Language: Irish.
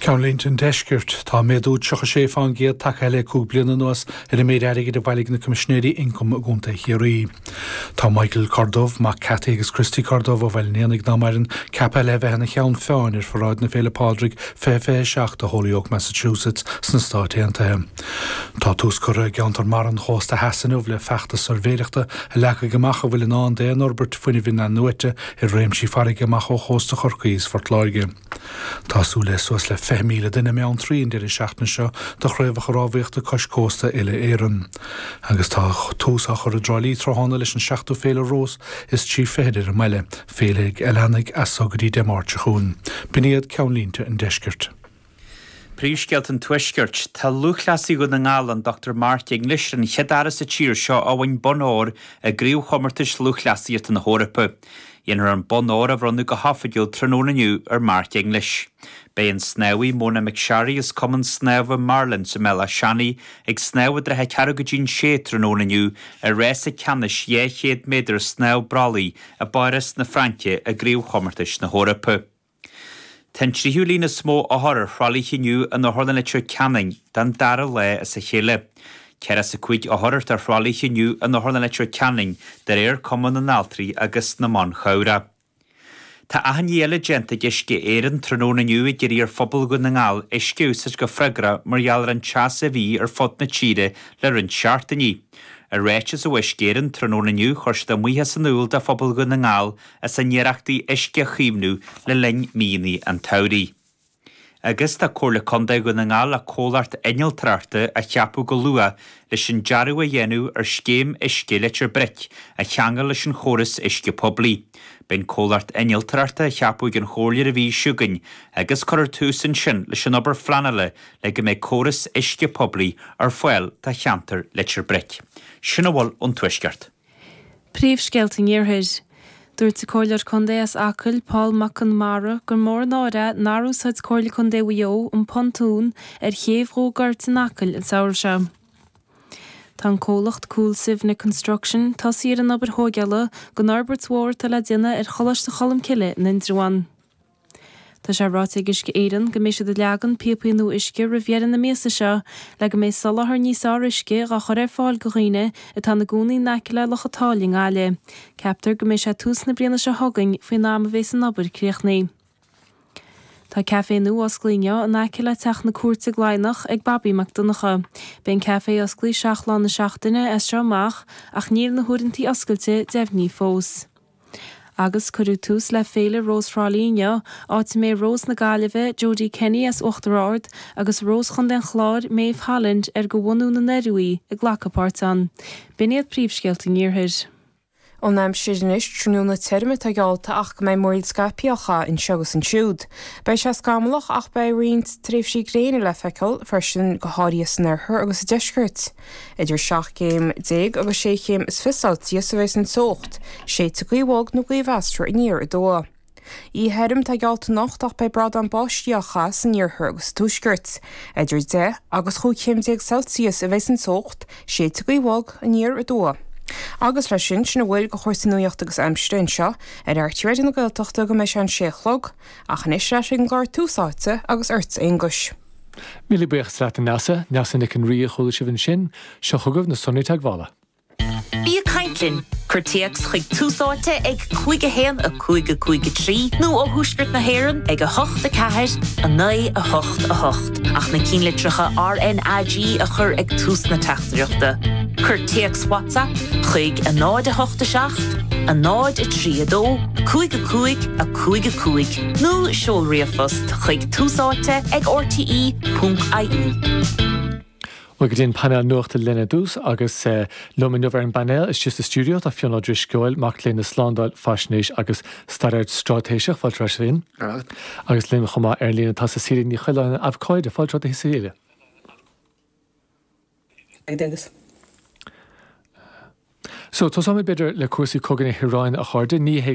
Ceannlínte an Deiscirt, Tá méadú 36 faoin gcéad tagtha le cúig bliana anuas ar an méid airgid a bhailigh na Coimisinéirí Ioncaim i gContae Chiarraí. Tá Michael Corduff, mac Cathy agus Christy Corduff ó Bhaile an Éanaigh ná maireann, ceaptha le bheith ina cheann feadhain ar Pharáid na Féile Pádraig 2027 i Holyoke, Massachusetts sna Stáit Aontaithe. Tá tús curtha i gceantar mara an chósta theas inniu le feachtas suirbhéireachta a leagfaidh amach a bhfuil i ndán d'aon fhorbairt fuinnimh in-athnuaite ar réimsí farraige amach ó chósta Chorcaí is Phort Láirge. Tá súil le suas le 20,000 duine i mBeanntraí an deireadh seachtaine seo do Chraobhacha Rámhaíochta Cois Cósta Uile Éireann agus tá tús á chur i dTrá Lí tráthnóna leis an 7ú Féile Rós is Trí Fichid ar an mbaile, féile a leanfaidh as so go dtí Dé Máirt seo chugainn. B'in iad ceannlínte an Deiscirt. Príomhscéalta an Tuaiscirt. Tá lúthchleasaí Dhún na nGall, an Dr Mark English, ar an chéad fhear as an tír seo a bhain bonn óir i gCraobhchomórtais Lúthchleasaíochta na hEorpa. Déanfar an Bonn Óir a bhronnadh go hoifigiúil tráthnóna inniu ar Mark English. Beidh an snámhaí Mona McSharry as Cumann Snámha Marlins i mBéal Átha Seanaidh ag snámh i dtrátha ceathrú go dtí'n sé tráthnóna inniu i rása ceannais 200 méadar snámh brollaigh i bPáras na Fraince i gCraobhchomórtais na hEorpa. Tá an tríú líon is mó othar ar thralaithe inniu in Otharlann Leitir Ceanainn don dara lá as a chéile. Ceathracha is a cúig othar atá ar thralaithe inniu in Otharlann Leitir Ceanainn de réir Cumann na nAltraí agus na mBan Cabhrach. Tá achainí eile déanta ag Uisce Éireann tráthnóna inniu ag iarraidh ar phobal Dhún na nGall uisce a úsáid go freagrach mar gheall ar an teas a bhí ar fud na tíre le roinnt seachtaíní. I ráiteas ó Uisce Éireann tráthnóna inniu chuir siad a mbuíochas in iúl do phobal Dhún na nGall as a n-iarrachtaí uisce a chaomhnú le linn míonnaí an tsamhraidh. Agus tá Comhairle Contae Dhún na nGall le comhlacht innealtóireachta a cheapadh go luath leis an dearadh a dhéanamh ar scéim uisce Leitir Bric a cheangal leis an chóras uisce poiblí. Beidh an comhlacht innealtóireachta á cheapadh ag an Chomhairle ar an mhí seo chugainn agus cuirfear tús ansin leis an obair phleanála le go mbeidh córas uisce poiblí ar fáil do cheantar Leitir Bric. Sin a bhfuil ón Tuaisceart. Príomhscéalta an Iarthair. Dúirt an Comhairleoir Contae as Acaill, Paul Mac Conmara, gur mór an náire nár úsáid Comhairle Contae Mhaigh Eo an pontún ar chéibh Dhumha Goirt in Acaill an samhradh seo. Tá an comhlacht Coolsivna Construction tosaithe ar an obair thóigeála don fhorbairt mhór atá le déanamh ar Choláiste Cholmcille in Indreabhán. Tá sé ráite ag Uisce Éireann go mbeidh siad ag leagan píopaí nua uisce roimh dheireadh na míosa seo le go mbeidh soláthar níos fearr uisce dhá chur ar fáil go dhaoine atá ina gcónaí in aice le Loch an tSáile i nGaillimh. Ceaptar go mbeidh sé tús na bliana seo chugainn faoin am a bhéas an obair críochnaithe. Tá café nua osclaithe inniu in aice le teach na cúirte i gCladhnach ag Bobby Mac Donncha. Beidh an café osclaithe seacht lá na seachtaine as seo amach ach níl na huaireantaí oscailte deimhnithe fós. Agus cuireadh tús le Féile Rós Thrá Lí inniu, áit a mbeidh Rós na Gaillimhe, Jodie Kenny as Uachtar Ard, agus Rós Chontae an Chláir, Méabh Holland, ar de bhunadh na nDoiriú í, ag glacadh páirt ann. B'in iad príomhscéalta an Iarthair. An aimsir anois, tráthnóna tirim atá geallta ach go mbeidh múraíl scaipthe á chaitheamh anseo agus ansiúd. Beidh sé scamallach ach beidh roinnt tréimhsí gréine le feiceáil freisin go háirithe san oirthear agus sa deisceart. Idir seacht gcéim déag agus sé chéim is fiche Celsius a bhéas an teocht, séidfidh gaoth bhog nó gaoth mheasartha aniar aduaidh. Oíche thirim atá geallta anocht ach beidh brádán báistí á chaitheamh san iarthar agus sa tuaisceart. Idir deich agus chúig chéim déag Celsius a bhéas an teocht, séidfidh gaoth bhog, aniar aduaidh. Agus leis sin, sin a bhfuil de chúrsaí nuaíochta agus aimsire anseo ar RTÉ Raidió na Gaeltachta go mbeidh sé an sé a chlog, ach anois ar ais ag an gclár Tús Áite agus ortsa a Aonghuis. Míle buíochas leat a Neasa, Neasa Nic an Rí a chuala sibh ansin. Seo chugaibh na sonraí teagmhála. Bí ag caint linn! Cuir téacs chuig Tús Áite ag 51553 nó ó Thuaisceart na hÉireann ag 84988 ach na cinnlitreacha RNAG a chur ag tús na teachtaireachta. Cuir téacs WhatsApp chuig 087 032 5555 nó seol ríomhphost chuig. Tús áite ag RTÉ.ie. Bhuel go dtí an painéal nuachta linn ar dtús agus liom inniu ar an bpainéal istigh sa stiúideo tá Fionn Ó Drisceoil, mac léinn na Slándáil, Faisnéis agus Staidéar Straitéiseach, fáilte romhat a Fhinn. Agus linn chomh maith ar an líne tá Cecilia Ní Choileáin, Abhcóide, fáilte romhat a Cecilia. So tosaímid b'fhéidir le cúrsaí cogaidh na hIaráine, a chairde. Ní hé.